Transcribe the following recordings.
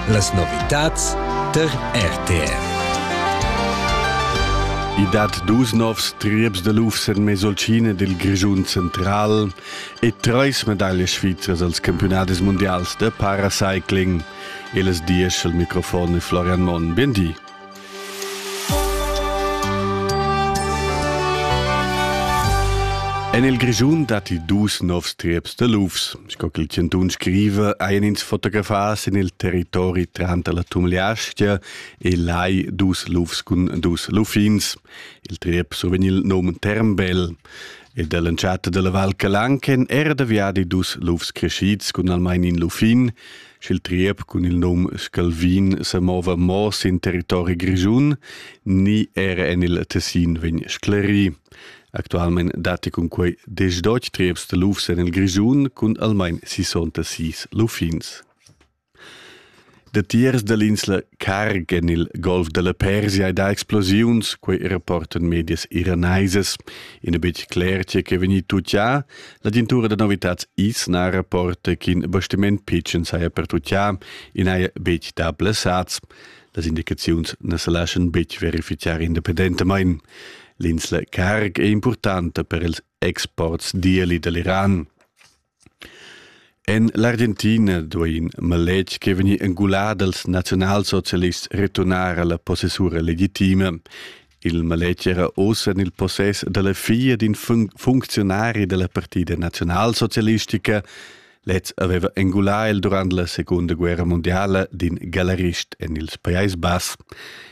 Las novitads tar RTR. I dat dus novs trieps da lufs en Mesolcina dil Grischun central e treis medaglias svizras als campiunadis mundials da paracycling. E las dies al microfon e Florian Monn. Bien di. En il Grischun datti dus novs trieps de lufs. Sco che il Cantun scrive, ein ins fotografas en il territori tranter la Tumliastia e lai dus lufs cun dus luffins. Il triep survegn il num Termbel. Ed all'entschatta della Val Calanchen era da viadi dus lufs crescids cun almain in luffin, sch'il triep cun il num Scalvin semova mo sin territori grischun ni era en il Tessin vegn sclerì. Actualmein datti cun quei diesch trieps de lufs en il Grischun cun almain 66 luffins. De tiers dell'insla Carg en il Golf della Persia da explosiuns, quei rapportan medias iraneses, in betg cler tge che vegni tutti a, La dintura da novitats is na rapporta ch'in bastiment pitschen saja pertutgà, i n'haja betg dà blessads. Las indicaziuns na sa laschan betg verificar independentamain. L'insla Karg è importanta per ils exports d'ieli da l'Iran. En l'Argentina duai in maletg che vegnì engulà dals naziunalsocialists returnar alla possessura legitima. Il maletg era oz en il possess dalla figlia d'in fun funcziunari della Partida Nationalsocialistica. Lez aveva engulà el durant la Seconda Guerra Mondiala d'in galerist en ils Pajais Bass.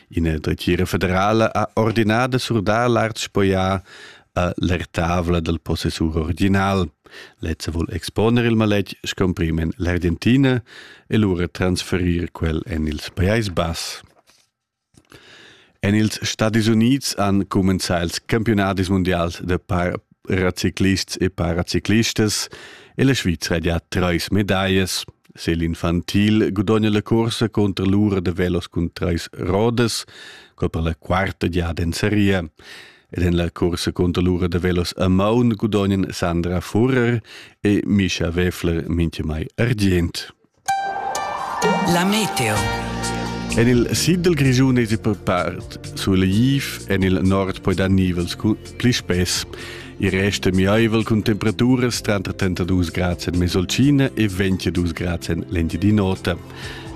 Ina dretgira federala ha ordinà da surdar l'art spoià a l'ertavla dal possessur original. Lez vuol exponer il maletg scomprim en l'Argentina e lura transferir quel en ils Pajais Bass. En ils Stadis Unids han cumenzà ils campiunadis mundials da paraciclists e paraciclistas e la Svizra ha trais medaglias. Se l'infantil gudogna la cursa contro l'ura da velos cun trais rodas, quel per la quarta giada en seria. Ed en la cursa contro l'ura da velos a maun gudognan Sandra Furer e Misha Weffler minchemai argient. La meteo. En il sid dal Grischun èsi per part sulegl en il nord poi dar nivels cun pli spess. Il rest è miaivel cun temperaturas tranter 32 grads en Mesolcina e 22 grads en l'Engiadin'Ota. La